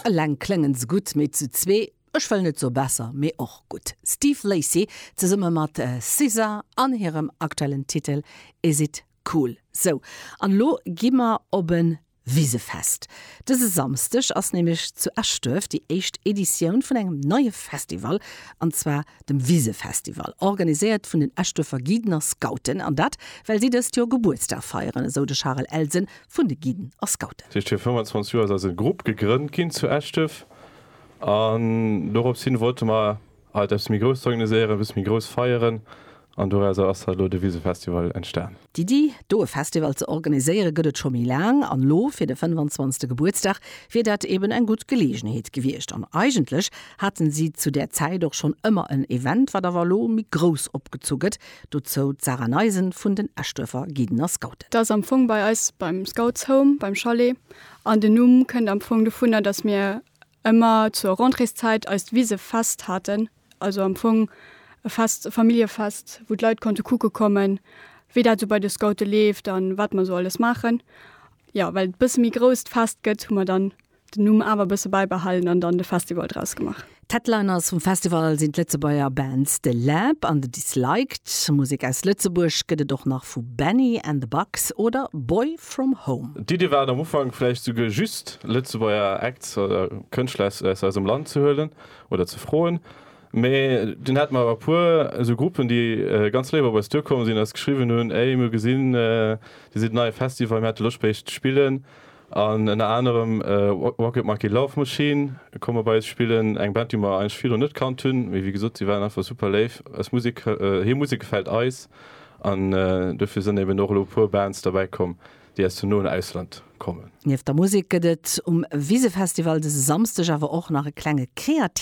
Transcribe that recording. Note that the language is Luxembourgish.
Eleng kléngen se gutt, mee zu zwee, ech wëll net soe besser, mee och gutt. Steve Lacy zesumme mat SZA an hirem aktuellen Titel Is It Cool. Sou, an elo gi mer op e Wisefest. Dëse Samsdeg ass nämlech zu Eschduerf déi éischt Editioun vun engem neie Festival, an zwar dem Wisefestival, organiséiert vun den Eschduerfer Guiden a Scouten, an dat well si dëst Joer Gebuertsdag feieren, esou de Charel Elsen vun de Guiden a Scouten. Fir 25 Joer ass eise Grupp gegrënnt ginn zu Eschdef an dorops hin wollte mer alt eppes méi Grousst organiséieren, eppes méi grouss feieren an dorausser ass halt elo de Wisefestival entstan. D'Iddi, do e Festival ze organiséiere gëtt et scho méi laang an elo fir de 25. Gebuertsdag wier dat eben eng gutt Geleegenheet gewiescht an eigentlech haten si zu där Zäit och schonn ëmmer en Event, wat awer elo méi grouss opgezu gëtt, Dozou d'Sarah Neisen vun den Eschduerfer Guiden a Scouten. Dat ass am Fong bei eis beim Scouts Home, beim Chalet. An den Numm kënnt am Fong dovunner, dass mir ëmmer zur Rentréeszäit eist Wisefest haten. Also am Fong e Fest, e Familljefest, wou d'Leit konnte kucke kommen, wéi dat esou bei de Scoute leeft a wat mer esou alles maachen. Jo, well et e bësse méi grouss d'Fest gëtt, hu mer dann den Numm awer e bësse bäibehalen an dann de Festival draus gemaach. D'Headliners vum Festival sinn d'Lëtzebuerger Bands The Lab an The Disliked. Musek aus Lëtzebuerg gëtt et och nach vu Benny and the Bugs oder Boy From Home. D'Iddi war et am Ufank vläicht souguer just Lëtzebuerger Acts oder Kënschtler aus eisem Land ze huelen oder ze froen, mee dunn hate mer awer e puer esou Gruppen, déi ganz léif op eis duerkomm sinn, eis geschriwwen hunn, Ey, mir hu gesinn, Dir sidd en neie Festival, mir hätte Loscht bei Iech ze spillen. An ënner anerem Rocket Monkey Love Machine komme bei eis spillen, eng Band déi mer eigentlech virdru net kannt hunn, mee wéi gesot si waren einfach super léif. Eis Musek, hir Musek gefält eis an dofir sënn eben och elo e puer Bands derbäi komm, déi aus dem noen Ausland kommen. Nieft der Musek gëtt et um Wisefestival dëse Samsdeg awer och nach e klenge Kreativmarché.